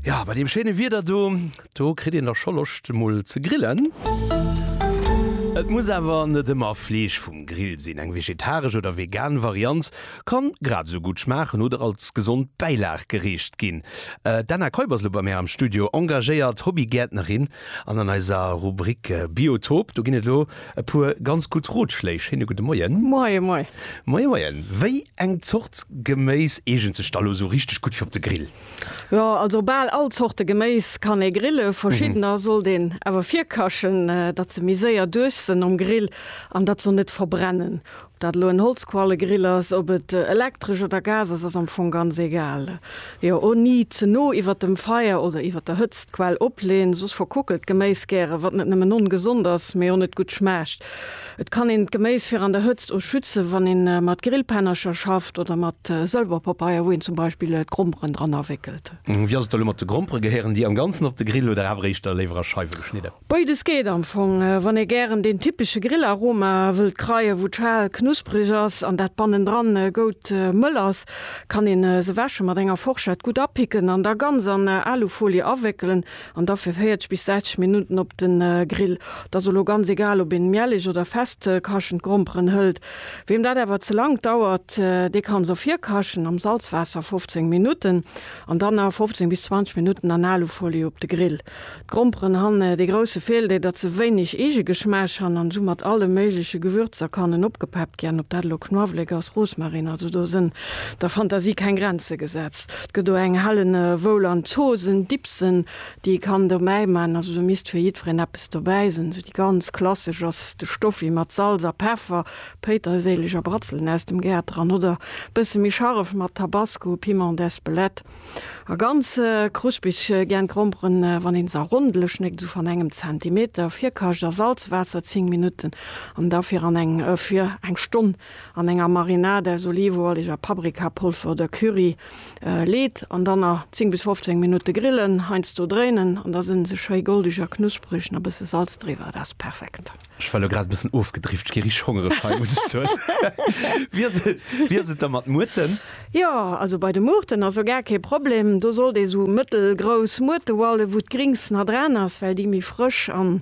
Ja, bei dem schéine Wieder do, do kritt een da scho Loscht emol ze grillen. Et muss awer net ëmmer Fleesch vum Grill sinn, eng vegetaresch oder vegan Variant kann grad esou gutt schmaachen oder als gesond Bäilag gereecht ginn. D'Anna Keup ass elo bei mär am Studio, engagéiert Hobbygäertnerin an an eiser Rubrik Biotop, do ginn et elo e puer ganz gutt Rotschléi. Schéine gudde Moien. Moie moie. Moie moien. Wéi Eng Zort Geméis eegent sech da lo sou richteg gutt fir op de Grill? Jo, also bal all Zorte Geméis kann ee grillen. Verschiddener sollt een awer virkachen, datt se méi séier duerch sënn um Grill an datt se och net verbrennen. Ob dat elo en Holzquallegrill ass, ob et elektresch oder Gas ass, ass am Fong ganz egal. Jo, o ni ze no iwwert dem Feier oder iwwert der Hëtzt d'Quell opleen, soss verkuckelt d'Geméis gäre, wat net nëmmen ongesond ass, mee och net gutt schmaacht. Et kann een d'Geméis fir an der Hëtzt o schützen, wann een mat Grillpennercher schafft oder mat Sëlberpapeier, wou een zum Beispill d'Gromperen dran awéckelt. Wéi ass et elo mat de Gromperen? Gehéieren déi am Ganzen op de Grill oder awer éischter léiwer a Scheiwe geschnidden? Béides geet am Fong. Wann ee gären deen typesche Grillaroma wëllt kreien, wou d'Schal knusperig ass an dat bannendran goud mëll ass, kann een se wäschen, mat enger Forschett gutt apicken an da ganz an Alufolie awéckelen. An da fir 40 bis 60 Minutten op den Grill. Et ass elo ganz egal op een miähleg oder fest kaschend Gromperen hëllt. Weem dat awer ze lang dauert, dee kann se och virkaschen am Salzwaasser 15 Minutten an dann nach 15 bis 20 Minutten an Alufolie op de Grill. D'Gromperen han dee grousse Feeldeel dat se wéineg Eegegeschmaasch han an soumat alle méigleche Gewürzer kannen opgepeppt gän. Op dat elo Knuawléck ass, Rosmarin, also do sen der Fantasie keng Grenze gesetzt. Gëtt o eng hellen e woul an d'Zosen Dipsen déi e kann dobäi man, also do misst fir jiddferen eppes dobäi sen. Sou déi ganz klassesch ass de Stoffi mat Salz a Peffer, Péiterséileg a Bratzelen aus dem Gaart dran oder bësse méi scharef mat Tabasco, Piment d'Espelette a ganz kruspig gären d'Gromperen. Wann een se rondele schnéggt, sou van engem Zentimeter, virkacht a Salzwaasser 10 Minutten an da fir an eng fir eng Stonn An enger Marinade aus Olivenualig a Paprikapolfer oder Curry leet an dann na 10 bis 15 Minutte grillen. Heiansdo dréinen an da sen se schéi goldig a knusperig. Na bësse Salz driwer, dat ass perfekt. Ech war elo grad e bëssen ofgedrift, gi richteg hongereg hei muss ech soen. Wéi ass et da mat Muerten? Jo, also bei de Muerten ass o gar kee Problem. Do sollt ee sou mëttelgrouss Muerte hualen, wou d'Grings na dran ass, well déi méi frësch an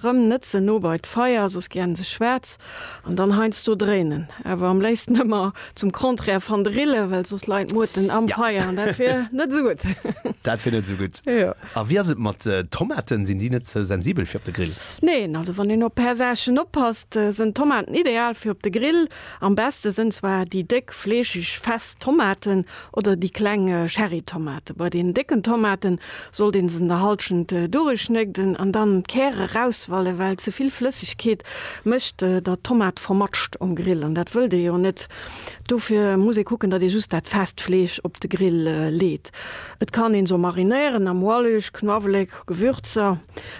Rëm net ze no bei d'Feier, soss gär se schwaarz an dann heiansdo dréinen. Awer am léifsten ëmmer zum Contraire van de Rille, well soss leit d'Muerten am Feier an dat wier net esou gutt. Dat wier net esou gutt. A wéi ass et mat Tomaten, sinn déi net ze sensibel fir op de Grill? Neen, also wann een op är Saachen oppasst, sënn Tomaten ideal fir op de Grill. Am beste sen zwar déi déck, fleeschig, fest Tomaten oder déi kleng Cherrytomaten. Bei den décken Tomaten sollt een se an der Halschent durischnégden an dann d'Käre rauswallen, well ze vill Flëssigkeet mecht der Tomat vermatscht um Grill an dat wëllt ee jo net. Dofir muss ee kucken, datt ee just dat fest Fleesch op de Grill leet. Et kann een se och marinéieren am Ualeg, Knuawelek, Gewürzer.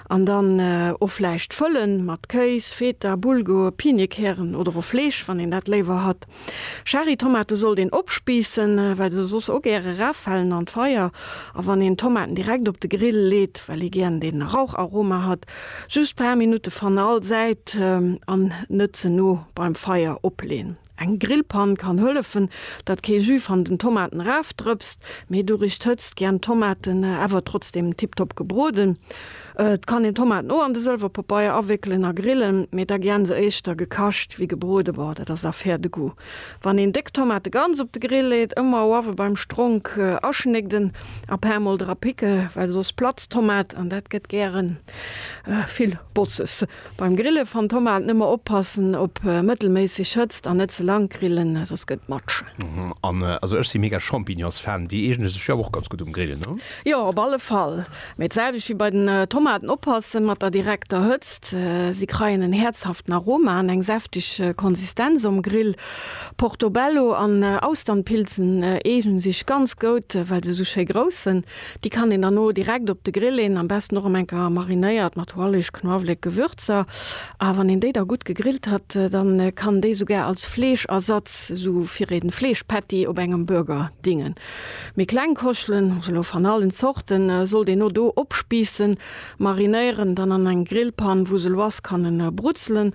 An dann o vläicht fëllen mat Kéis, Feta, Bulgur, Piniekären oder o Fleesch, wann een dat léiwer hat. Cherrytomate sollt een opspiissen, well se soss o gäre rafalen an d'Feier. A wann een Tomaten direkt op de Grill leet, well ee gären den Raucharoma hat, just paar Minutte van all Säit an net ze no beim Feier opleen. Eng Grillpann kann hëllefen dat kee Jus van den Tomaten raaf drëpst, mee durich d'Hëtzt jiänn d'Tomaten äwer trotzdem tiptop gebrooden. Et kann een Tomaten o an de Sëlwerpapeier awéckelen a grillen, mee da jiänn se éischter gekascht ewéi gebrooden. Boah dat ass affaire de goût wann een déck Tomate ganz op de Grill leet, ëmmer oawe beim Stronk aschnégden a paar mol dra picke well soss platzt d'Tomat an dat gett gären vill Botzes. Beim Grille van Tomat nëmmer oppassen op mëttelméisseg Hëtzt an net ze lang grillen, soss gëtt matsch. An also ech si mega Champignons Fan, déi eegene sech jo awer och ganz gutt um Grill, ne? Jo, op alle Fall. Mee et selwecht wéi bei den Tomaten, oppassen mat der direkter Hëtzt, si kreien en häerzhaften Aroma an eng säftig Konsistenz um Grill. Portobello an Austernpilzen eegnen sech ganz goud well se sou schéi grouss sen. Déi kann een dann o direkt op de Grill leen, am besten och em eng Kéier marinéiert mat Hoalleg, Knuawléck, Gewürzer. A wann een déi da gutt gegrillt hat, dann kann déi sougar als Fleeschersatz, sou fir een Fleeschpatty op engem Burger dingen. Méi kleng Koschelen, also lo van allen Zorten, sollt een o do opspiissen, marinéieren, dann an eng Grillpann, wou se lo ass, kann en brutzelen.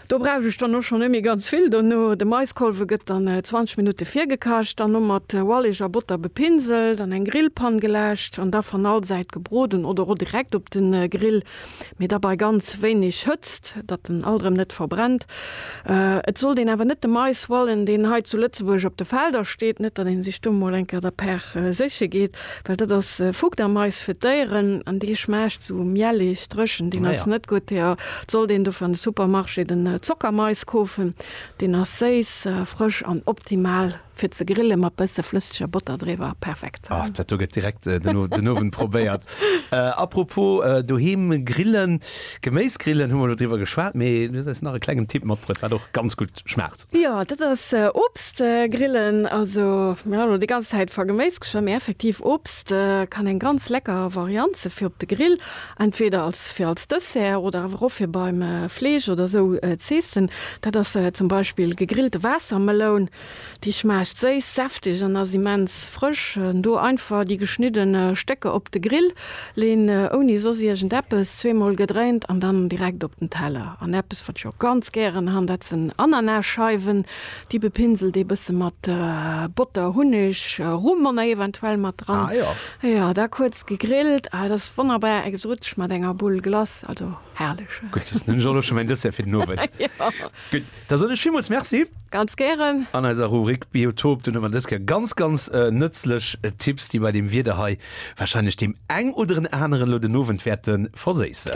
Do brauch ech dann och schonn net méi ganz vill dono. De Maiskolwe gëtt dann 20 Minutte virgekacht an no mat Ualeg a Botter bepinselt an eng Grillpann geläscht an da van all Säit gebroden oder o direkt op den Grill, mee da bei ganz wéineg Hëtzt, datt en alt erëm net verbrennt. Et sollt een awer net de Mais hualen, deen hei zu Lëtzebuerg op de Felder steet, net datt een sech do mol enker der Per séche geet. Well dat ass Fuchtermais fir d'Déieren an dee schmaacht sou miellig, drëchen, deen ass net gutt. Daer sollt een dofir an de Supermarché den Zockermais kofen. Deen ass séiss, frësch an optimal fir ze grille mat bësse flësseger Botter driwwer. Perfekt! Oh, dat do gëtt direkt den Owend probéiert. Apropos doheem grillen, Geméisgrillen hu mer elo driwwer geschwat, mee du hues eis nach e klengen Tipp matbruet, wat och ganz gutt schmaacht. Jo, dat ass Obst grillen. Also mir han elo déi ganz Zäit va Geméis geschwa, mee effektiv Obst kann eng ganz lecker Variant se fir op de Grill, entweder als fir als Dessert oder awer och fir beim Fleesch oder sou z'eessen. Dat ass zum Beispill gegrillte Waassermeloun. Déi schmaacht séiss, säftig an ass immens frësch. Do einfach déi geschniddene Stécker op de Grill Leen ouni soss iergend eppes, zweemol gedréint an dann direkt op den Teller. An eppes wat ech och ganz gären han, dat sen Ananasscheiwen. Déi bepinselt ee bësse mat Botter, Hunneg, Rum an Ei eventuell mat dran. Jo, da kuerz gegrillt. Ah, et ass wonnerbar exotesch mat enger Bulle Glace. Also herrlech. Gutt, dann hunn ech och elo scho mäin Dessert fir den Owend. Da soen ech villmools Merci. Ganz gären. An eiser Rubrik Biotop, do hu mer dës Kéier ganz, ganz nëtzlech Tipps, déi bei deem Wieder hei wahrscheinlech deem eng oder en aneren elo den Owend wäerte verséissen.